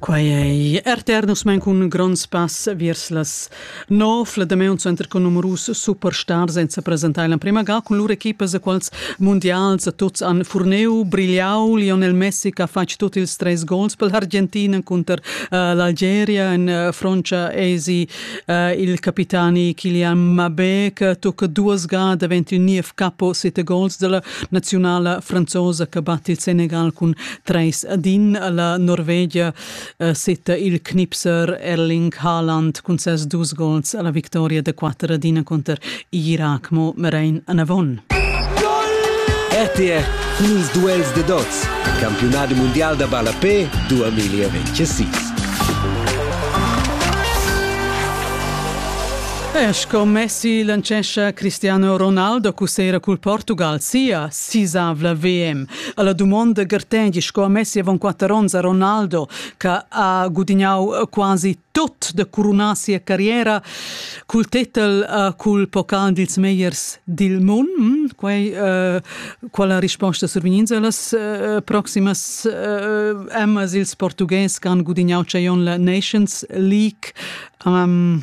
Quai ei RTR nus mein cun gronds pass viers las nov. La Damaun center cun numerus superstars senza presentar l'emprema ga cun lur equipas a quals mundials tuts han furneu brigliau. Lionel Messi che ha fatg tutti ils treis gols per l'Argentina cunter uh, l'Algeria en uh, froncia esi uh, il capitani Kylian Mbappé che tocca duas ga daventi niev capo sette gols della naziunala franzosa che batte il Senegal cun 3 ad 1, la Norvegia eh, setta il Knipser Erling Haaland cun ses dus gols alla vittoria da 4 ad 1 contro Irak mo Merein Anavon. RTR Ils duels de dots. Campionat mondial da ballapé 2026. E sco Messi lancescha Cristiano Ronaldo cussera cul Portugal sia sisavla VM. Alla dumonda gartendi sco Messi avon quatter onns a Ronaldo che ha gudignau quasi tot da coronar sia carriera cul tetel uh, cul pocal dils meiers dil mund. Mm, quei uh, quala risposta survigninza las uh, proximas uh, emmas ils portughes che han gudignau Chaion la Nations League um,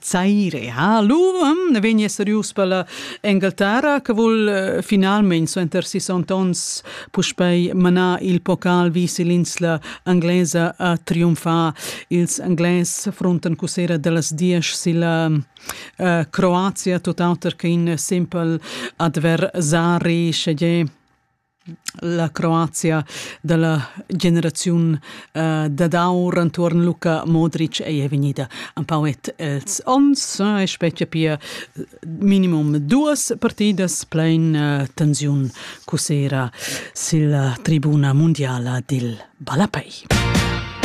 Zaire, ha l'um vegn eserius per la Engelterra che vul eh, finalmein suenter sessant onns puspei manar il pocal vis l'insla englesa a triumfar. Ils Englès frontan cusera dellas diesch silla uh, Croazia, tot auter che in simpel adversari, sche La Croazia da la generaziun uh, dad aur entuorn Luka Modric ei vegnida empau et els ons e specia pia minimum duas partidas plein uh, tensiun cusera silla tribuna mundiala dil ballapei.